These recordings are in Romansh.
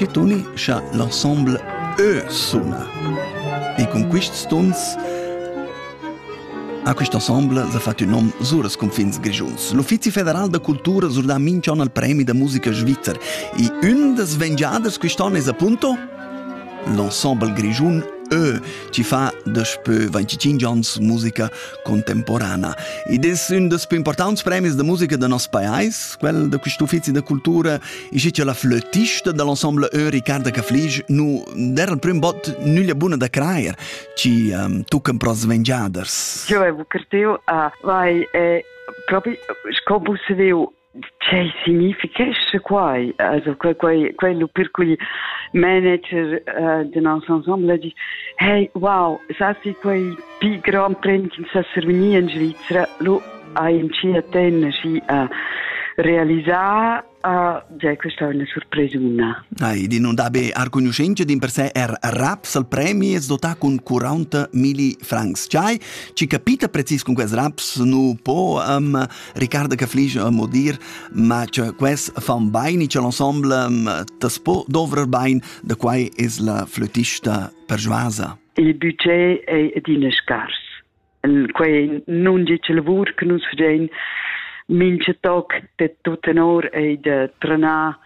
Nasci tuni cha l'ensemble eu suna. E cun quists tuns A quist ensemble s'ha fat ün nom sur els cunfins grischuns. L'Uffizi federal da cultura sur dà minch'on al premi da musica svizzer. E ün das vengiaders quist'on es appunto L'ensemble grischun Eu chi fa daspö 25 ans musica contemporana ed es ün dals plü importants premis da musica da nos pajais, quel da quist uffizi da cultura, e schi cha la flötista da l'ensemble Eu Riccarda Caflisch nu der'l prüm bot nüglia buna da crajer chi um, tuccan pro svengiaders. Eu vau carteu a vai e propi sco vus veu Tgei significhescha quai? Also quei quei quei lu per cugl manager uh, de nos ensemble di hey wow sasi quei pi grand premi che sa survegnir in Svizra lu hai in ci a tenna si a realisar uh, già questa è una sorpresa una. Ai, di non dabe arconoscenza din per sé er raps al premi es dotà con 40 mili francs. Chai, ci capita precis con quest raps nu po um, Ricardo che flisch mo dir, ma che quels fan bain c'è l'ensemble das po dovrar bain, da quai es la flötista persuasa. Il budget è adina scars. Quai non è il lavor che nus facein mince toc de tutta or e de tranar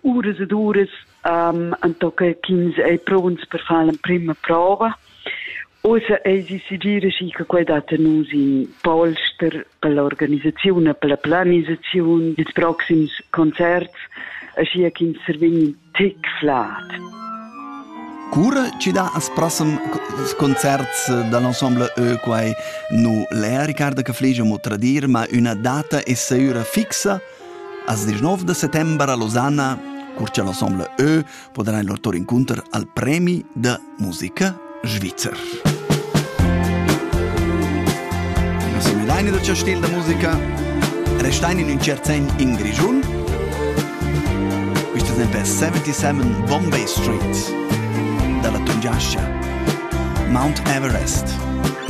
uras ed uras um, entochen ch'ins ei pronts per far l'emprema prova. Ussa eis decidir schi che quei dat a nus in polster per l'organisaziun e per la planisaziun dils proxims concerts, aschi ch'ins survegn in tick flat. Cura ci dà als prossimi concerts dall'ensemble E quai nu l'è, Riccardo che fligia mo tradir, ma una data è sicura fixa Als 19 da settember a Losanna, cur cha l'ensemble Ö podarà in lur tour incunter al premi da musica svizzer. Non seguidaini da cio stil da musica, restaini in ün cert sen in Grischun. Questo esempio è 77 Bombay Street, dalla Tungiascia. Mount Everest.